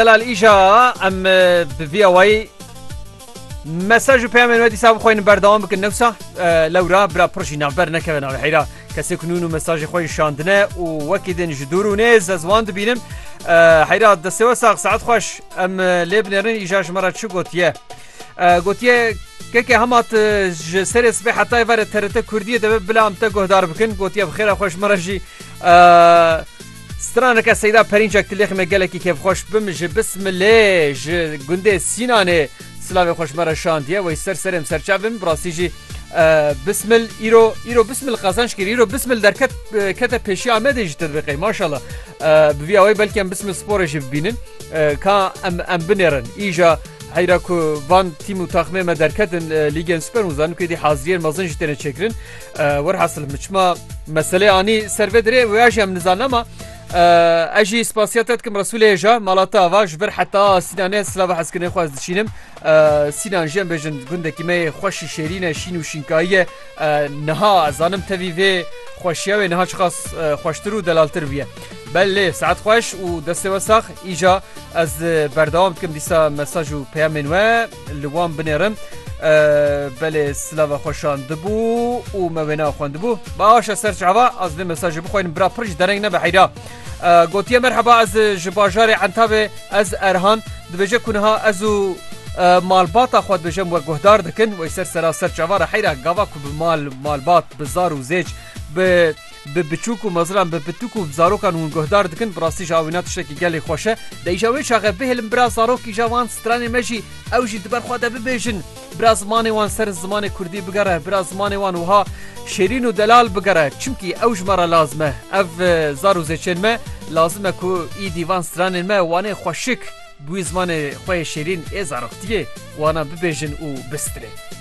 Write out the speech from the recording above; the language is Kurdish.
Delal îşa em bi vî awayî mesaj û peyamên we dîsa bixweynin berdewam bikin newsa lewra bira pir jî navber nekeve navê heyra kesê ku nûn û mesajê xwe şandine û wekî din ji dûr û nêz ez wan dibînim heyra destê we sax saet xweş em lê binêrin îja ji me re çi gotiye gotiye keke hemat ji serê sibê hetayê verê terete Kurdiye deve bila em te guhdar bikin gotiye bi xêra xweş me re jî Straneke Seyda Perinçek tilêxê me gelekî kêfxweş bimije bismilê ji gundê Sînanê silavê xweş me re şandiye wey ser serê em serçav bim birastî jî bismil îro îro bismil qazanç kir îro bismil derket kete pêşiya Amedê jî te dibiqey maşallah bi vî awey belkî em bismil sporê jî bibînin ka em em binêrin îja heyra ku van tîm û taxmê me derketin lîgên super û zanin ku êdî haziriyên mezin jî têne çêkirin Werhasil min çima meselê anî ser vê dirê wê jî em nizanim ma ez jî spasiya te dikim Resûlê hêja malata ava ji vir heta Sînanê silava hezkirinê xwe ez diçînim Sînan jî em bêjin gundekî me yê xweşî şêrîn e şîn û şînkayî ye niha ez zanim tevî vê xweşiya wê niha çiqas xweştir û delaltir bûye belê saet xweş û destê we sax îja ez berdewam dikim dîsa mesaj û peyamên we li wan binêrim belê silava xwe şandibû û me wêna xwendibû başa ser çava ez vê mesajê bixwînim bira pir ji dereng nebe heyra gotiye merheba ez ji bajarê entavê ez erhan dibêje ku niha ez û malbata xwe dibêjem we guhdar dikin wê ser sera ser çava re heyra gava ku bi mal malbat bi zar û zêc bi bi biçûk û meziran bi pituk û zarokan hûn guhdar dikin bi rastî ji awîna tiştekî gelê xweş e. Di îşa wê çaxe bihêlin bira zarok îşa wan stranên me jî ew jî di ber xwe de bibêjin. Bira zimanê wan ser zimanê kurdî bigere, bira zimanê wan wiha şêrîn û delal bigere çimkî ew ji me re lazim e. Ev zar û zêçên me lazim e ku îdî van stranên me wanê xweşik bi wî zimanê xwe yê şêrîn ê zaroktiyê wana bibêjin û bistrin.